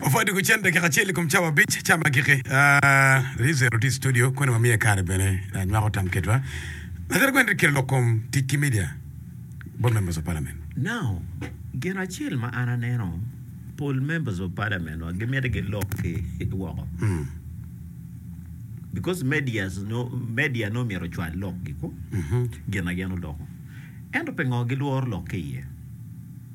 Wapwod doko cen dakika acel i kom cawa abic ca ma giki. Rizero tye i studio kone wamiye kare bene ah, nywako tam ketwa. Lajara Gwen Ricky lok kom tic ki media, both members of parliament. Now, gin acel ma an aneno, pol members of parliament wa gimito gilok ki woko. Because medias no, media no myero ocwal lokgi ko, gin ma gin oloko. Ento pingo gilworo lok ki iye?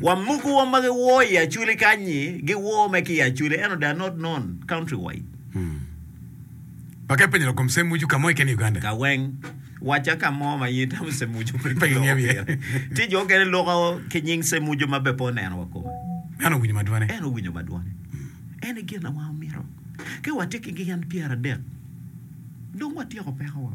Wa muku wa ma gi woo i aculi kany ni gi woo me ki i aculi ento they are not known country wide. Wa ke penyo lakom Semmuju ka mo keken i Uganda. Ka weng, wacca ka mo ma in itamo Semmuju pe ki loko pire. Tye jo okene loko ki nying Semmuju ma be pe oneno wa kome. En owinyo ma dwane. En owinyo ma dwane. En e gin awa omito. Ke wa tye ki gin pyera dek, dong wa tyeko peko wa.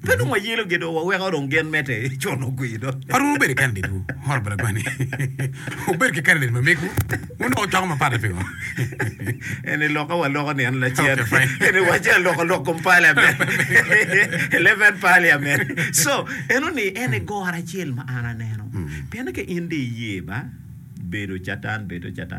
Pe dong wayelo gi doo, waweko dong gen mete con ogwi do. Waromo bedo i kandidetwu, oro bene kwani wubed ki kandidet ma megwu, wunongo coko mapat-ti pingo? En i loko aloko nino lacen. Okay, fine. En i wace aloko lok kom parliament. Eleven parliament. So, eno ni en e goro acel ma an aneno. Pienni ka in dong iye ba, bedo catan, bedo catan.